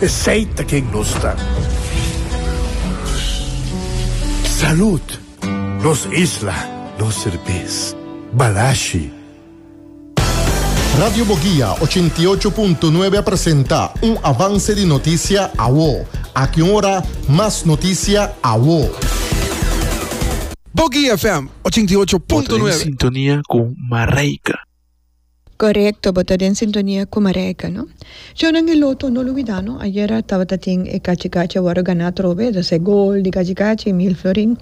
Esey ta ken nos ta. Salud! Nos isla, nos serbes. Balashi! Radio Boguia ochenta i ocho punto nuebe a presenta un avance di notisia awo. Aki un ora mas notisia awo. Boguia FM ochenta i ocho punto nuebe. Bo ta den sintonia cu Mareika. Korekto bo ta den sintonia ku Marijke no. Chonan e loto no lo wida no ayera tabata tin e kachi kachi a wòrdu ganá atrobe e ta se gol di kachi kachi i mil florin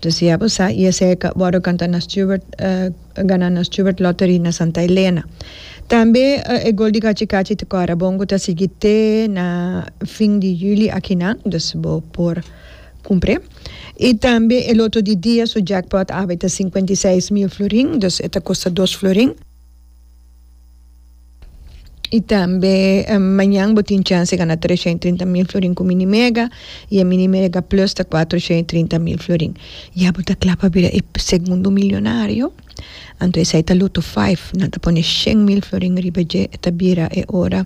so si abo sa i esei a wòrdu kanta na Stewart ganá na Stewart lottery na Santa Elena tambe e gol di kachi kachi te kòrda bon ku ta sigui te na fin di juli aki nan dus bo por kumpré. I tambe e loto di dia su jackpot awe ta sinkuenta i seis mil florin, dus e ta kosta dos florin. I tambe mañan bo tin chans di gana treshon i trinta mil florin ku Mini Mega i e Mini Mega Plus ta kuatroshon i trinta mil florin. Ya bo ta kla pa bira e segundo milionario? Anto esei ta loto five nan ta pone shen mil florin riba dje e ta bira e ora